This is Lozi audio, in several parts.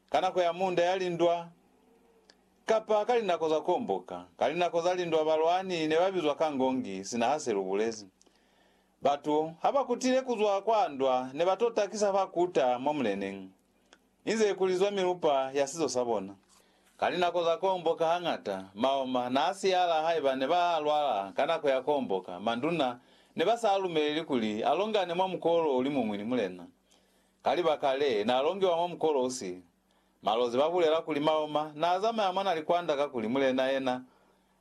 ka nako ya munda ya lindwa, kapa ka linako za komboka. Ka linako za lindwa balwani ne ba bizwa ka ngongi, sina ha se lu bulezi. Batu ha ba kutile ku zwa kwa ndwa ne ba to takisa fa kuta mwa muleneñi, inze ku lizwa milupa ya sizo sa bona. Ka linako za komboka hañata maoma n'a siyala haiba ne ba lwala ka nako ya komboka, manduna ne ba sa lumeleli kuli a longane mwa mukolo o li muñwi ni mulena. Ka libaka le, n'a longiwa mwa mukolosi. Malozi ba bulela kuli Maoma n'a zamaya mwa na likwanda kakuli mulena yena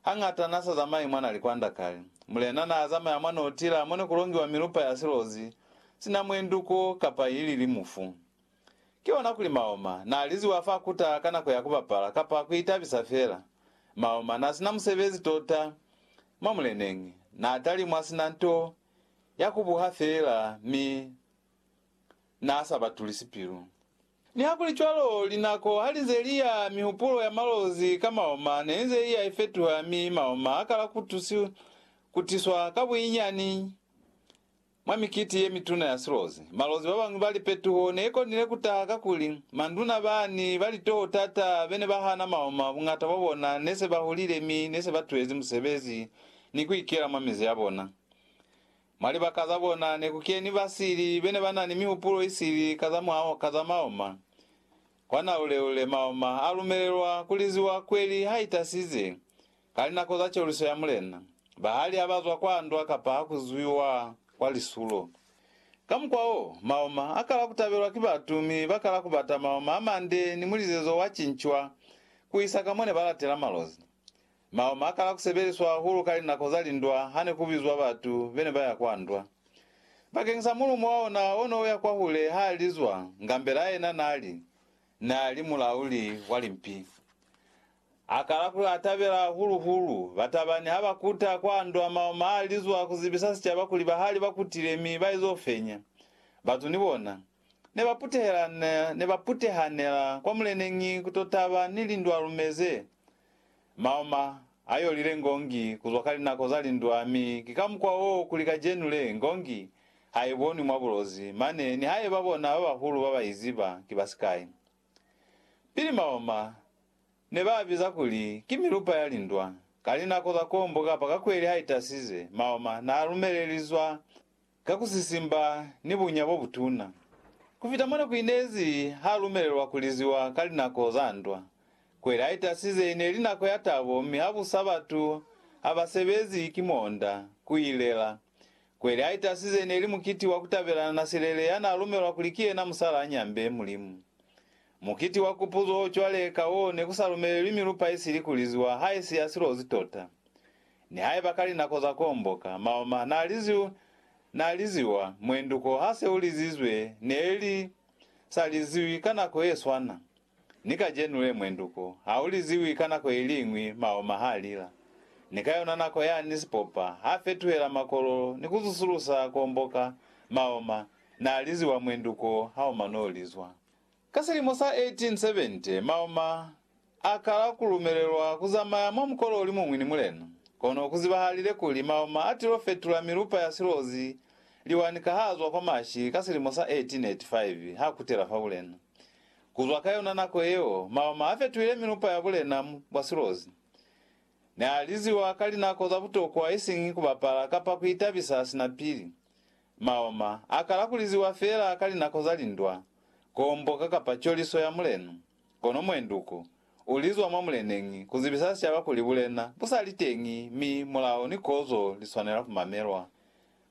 hañata n'a sa zamayi mwa na likwanda kale. Mulena n'a zamaya mwa n'o tila mo ne ku longiwa milupa ya silozi, sina mwenduko kapa ili li mufu. Ki ona kuli Maoma n'a liziwa fa kuta ka nako ya ku bapala kapa ku itabisa fela. Maoma n'a si na musebezi tota mwa muleneñi, n'a talimwa sina nto ya ku buha fela mi n'a sa ba tulisi pilu. Nihakulicwalo, linako ha li nze li ya, mihupulo ya Malozi ka maoma ne inze i ya ifetuha mi maoma a kala ku tusi ku tiswa ka buinyani. Mwa mikiti ye mituna ya silozi, Malozi ba bañwi ba lipetuho ne i konile ku taha kakuli manduna ba ni ba litoho t'ata be ne ba hana maoma buñata bwa bona ne se ba hulile mi ne se ba tuhezi musebezi ni ku ikela mwa mizi ya bona. Mwa libaka za bona ne ku keni basili be ne ba na ni mihupulo i sili ka za mwaho ka za maoma. Kwa naule-ule maoma a lumelelwa ku liziwa kweli ha i tasize, ka linako za coluso ya mulena, bahali ha ba zwa kwa ndwa kapa ha ku zwiwa kwa lisulo. Ka mukwa wo, maoma a kala ku tabelwa ki batu mi ba kala ku bata maoma a mande ni mulizezo wa cincwa ku isa ka mo ne ba latela malozi. Mao makala kusebeliswa hahulu ka linako za lindwa hane kubizwa batu bene baya kwa ndwa. Bakeng sa mulumo wa ona ono uya kwahule ha lizwa, Ngambela yena nali, nali mulauli wa limpi. Akala ku atabela hahulu hulu. Batabani ha bakuta kwa ndwa mao ma lizwa kuzibisa sicaba kuli bahali bakutile mi baizo fenya. Batu ni bona, ne baputehelanela kwa muleneñi kutotaba ni lindwa lume ze Maoma a yolile ngongi kuzwa ka linako za lindwa mi ki ka mukwa wo kuli kacenu le ngongi ha i bonwi mwa bulozi mane nihaiba bona ba bahulu ba ba i ziba ki ba sikai. Pili maoma ne ba a biza kuli ki milupa ya lindwa. Ka linako za kombo kapa kakweli ha i tasize, maoma n'a lumelelizwa ka ku sisimba ni bunya bo butuna. Ku fita mona ku inezi ha lumelelwa ku liziwa ka linako za ndwa. Kweli a itasize i ne li nako ya tabo mi ha busa batu ha ba sebezi ki monda ku i lela. Kweli a itasize i ne li mukiti wa ku tabelana na Silele ya n'a lumelwa kuli ki yena musala a nyambe Mulimu. Mukiti wa kupuzo cwale ka wo ne ku sa lumelelwi milupa isili ku liziwa ha isi ya silozi tota. Nihaiba ka linako za komboka, maoma n'a liziwa, muenduko ha se u lizizwe, ne li sa liziwi ka nako ye swana ni kacenu le. Muenduko ha u liziwi ka nako i liñwi, maoma ha lila. Ni ka yona nako yani sipopa ha fetuhela makololo ni ku zusulusa komboka, maoma n'a liziwa muenduko ha u mano lizwa. Ka silimo sa 1870, Maoma a kala ku lumelelwa ku zamaya mwa mukolo o li muñwi ni Mulena. Kono ku zibahalile kuli Maoma a tilo fetula milupa ya silozi liwani ka ha zwa kwa Mashi ka silimo sa 1885 ha kutela fa bulena. Ku zwa ka yona nako yeo, Maoma a fetuhile milupa ya bulena bwa silozi. Ne a liziwa ka linako za butokwa isiñi ku bapala kapa ku itabisa sina pili. Maoma a kala ku liziwa fela ka linako za lindwa, komboka kapa coliso ya mulenu, kono muenduku u lizwa mwa muleneñi ku zibisa sicaba kuli bulena bu sa li teñi mi mulao ni kozo li swanela ku mamelwa.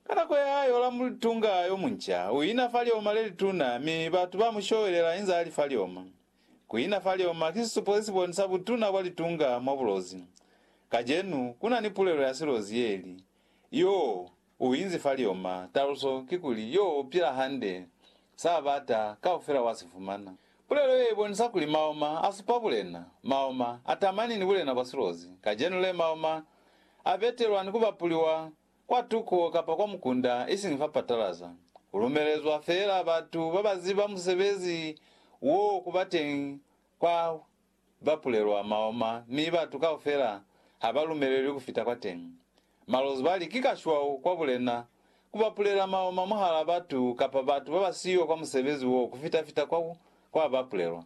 Ka nako ya hae Yoramu litunga yo munca u ina fa lioma le lituna mi batu ba mu showelela inza a li fa lioma. Ku ina fa lioma ki sisupo se si bonisa butuna bwa litunga mwa bulozi. Kacenu ku na ni pulelo ya silozi ye li, Yoo! U inzi fa lioma. Taluso kikuli, yo pila hande, sa bata, kaufela wa si fumana. Pulelo ye ibonisa kuli maoma a supa bulena. Maoma a tamani ni bulena bwa silozi. Kacenu le maoma a betelwa ni ku bapuliwa kwa tuko kapa kwa mukunda, isiñi fa patalaza. Ku lumelezwa feela batu ba ba ziba musebezi wo ku ba teñi kwa ba pulelwa maoma mi batu kaufela ha ba lumelelwi ku fita kwateñi. Malozi ba li, Ki kashwau kwa bulena ku ba pulela maoma mwahal'a batu kapa batu ba ba siyo kwa musebezi wo ku fita-fita kwa kwa ba pulelwa.